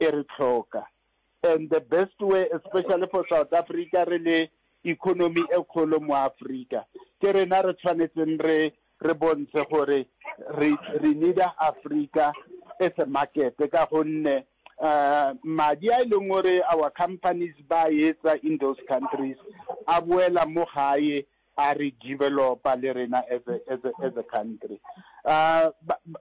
e re hloka and the best way especially for South Africa re le economy e kgolo mo Africa ke rena re tshwanetseng re re bontshe gore re re need Africa as a market ka gonne uh, madi a e leng gore our companies ba etsa in those countries a boela mo gae a re developa le rena as a, as a, as a country uh, ba, ba,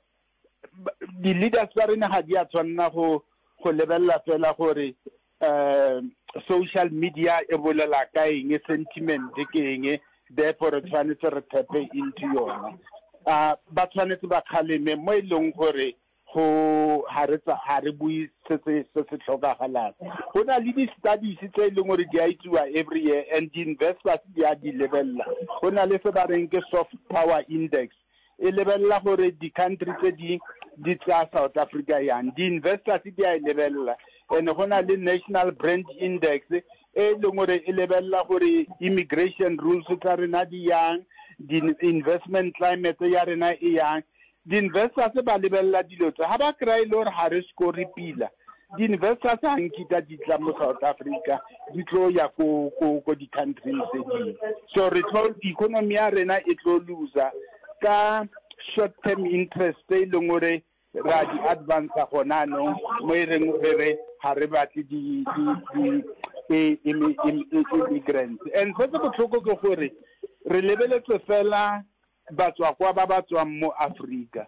di-leaders tsa rena ga di a tshwanela go go lebelela fela gore um social media e bolela ka eng sentiment ke eng therefore re tshwanetse re thepe into yona a ba tshwanetse ba kgaleme mo e leng gore go ga re ga re bue se se se se tlhokagalang go na le di-studies tse e leng gore di a itsiwa every year and di-investors di a di lebelela go na le se ba reng ke soft power index e lebelela gore di-country tse di di tsaya south africa yang di-investors di a e lebelela and go na le national brand index e e leng gore e lebelela gore immigration rules tsa rena di yang di-investment climate ya rena e yang di-investors ba lebelela dilo tse ga ba kry-e le gore ga re score pila Di-investors a nkita di tla mo South Africa di tlo ya ko ko ko di-countrying tse dingwe so re tlo economy ya rena e tlo loser ka short term interest tse e leng gore ra di advance gona anong mo e reng re re ga re batle di-immigrants and se se botlhoko ke gore re lebeletse fela batswakwa ba ba tswang mo Africa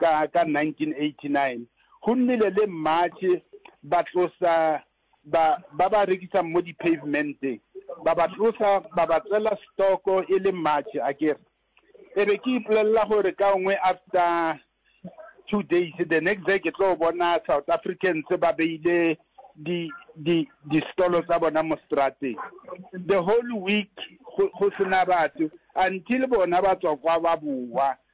Ka ka 1989 go nnile le mmatšhe ba tlosa ba ba ba rekisang mo di-pavementeng, ba ba tlosa ba ba tsela stoko e le mmatšhe a ke re. E be ke ipolelela gore ka ngwe after two days the next day ke tlo bona South Africans ba beile di di di stolo tsa bona mo strateng the whole week go go sena batho until bona ba tswa kwa ba boa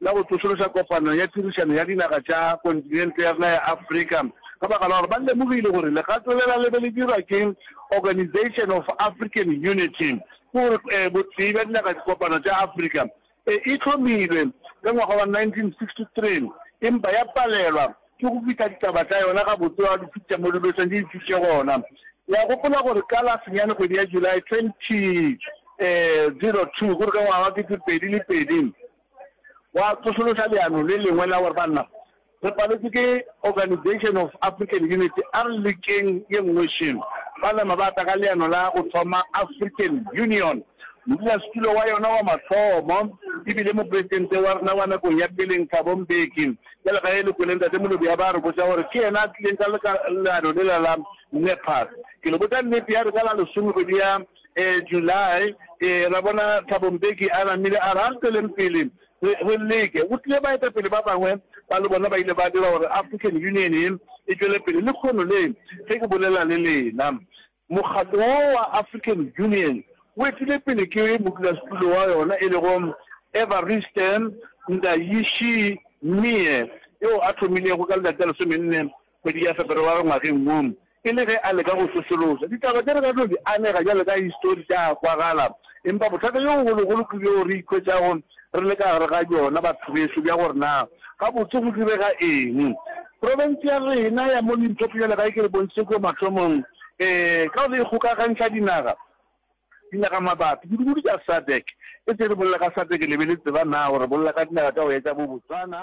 la go tsošološa kopano ya tirišano ya dinaga tša kontinente ya rena ya Afrika ka baka la gore ba lemogile gore legato lela le be le dirwa ke Organisation of African Unity, ke gore botee bja dinaga dikopano tša Afrika, e e hlomilwe ka ngwaga wa 1963 empa ya palelwa ke go fihla ditaba tša yona gabotse wa diphuti tša mo dibeseng di ntšhitše gona. Le a gopola gore ka la senyane kgwedi ya July 2002 gore ka ngwaga wa 2002, Wa tsošološa leano le lengwe la gore, Banna, re paletšwe ke Organisation of African Unity, a re lekeng ye nngwe šele. Ba nama ba tla ka leano la go thoma African Union. Modulasetulo wa yona wa mathomo e bile Mopresidente wa rena wa nakong ya peleng, Thabo Mbeki. Bjale ge le kwele Ntate Molobya ba re botša gore ke yena a tlileng ka leano lela la NEPAD, ke le botša nnete, ya re ka la lesomekgwedi ya. July, ee, ra bona Thabo Mbeki a namile a re, A re tšweleng pele re, re leke. Go tlile baetapele ba bangwe ba le bona ba ile ba dira gore African Union e, e tšwele pele. Lekhono le, ge ke bolela le lena, mokgatlo wo wa African Union o etile pele ke modulasetulo wa yona e lego Evariste Ndayishimiye, yo a thomilego ka letšatši la lesomenne Kgwedi ya Feberewari ngwageng wo, e le ge a leka go sosološa, ditaba tše re ka tlo di anega bjalo ka histori tša a kwagala. Empa bothata bjo bogologolo ke bjoo re ikhwetšago re le ka gare ga bjona, batho bešo, bja gore na gabotse go direga eng. Profense ya rena ya mo Limpopo, bjalo ka ge ke re bontšhitše kua mathomong, ee, ka go ikgokagantšha dinaga, Dinaga mabapi, kudu-kudu tša SADC. E se re bolela ka SADC le be le tseba na gore re bolela ka dinaga tša go etša bo Botswana,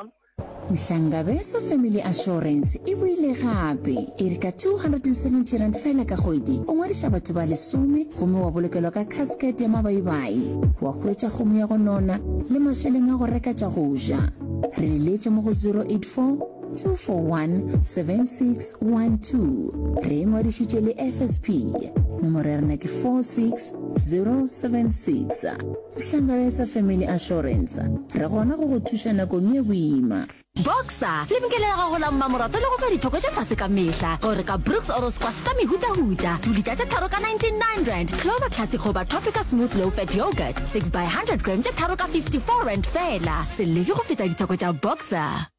Nhlangabeza Family Assurance e boile gape e re ka R270 fela ka kgwedi o ngwadiša batho ba lesome gomme wa bolokelwa ka casket ya mabaibai, wa hwetša kgomo ya go nona le mašeleng a go reka tša go ja. Re le letše mo go 084. 2417612 re ngwadišitše le fsp nomoro ya rena ke 46076 mohlanga ya sa family assurance re gona go go thuša nakong ye boima boxer lebenkele la gago la mmamorato le go fa dithoko tše fase ka mehla gore ka brooks oro squash ka mehutahuta tulita tše tharo ka 99 rand clover classic goba tropica smooth low fat yogurt 6 by 100 gram tše tharo ka 54 rand fela se leke go feta dithoko tša boxer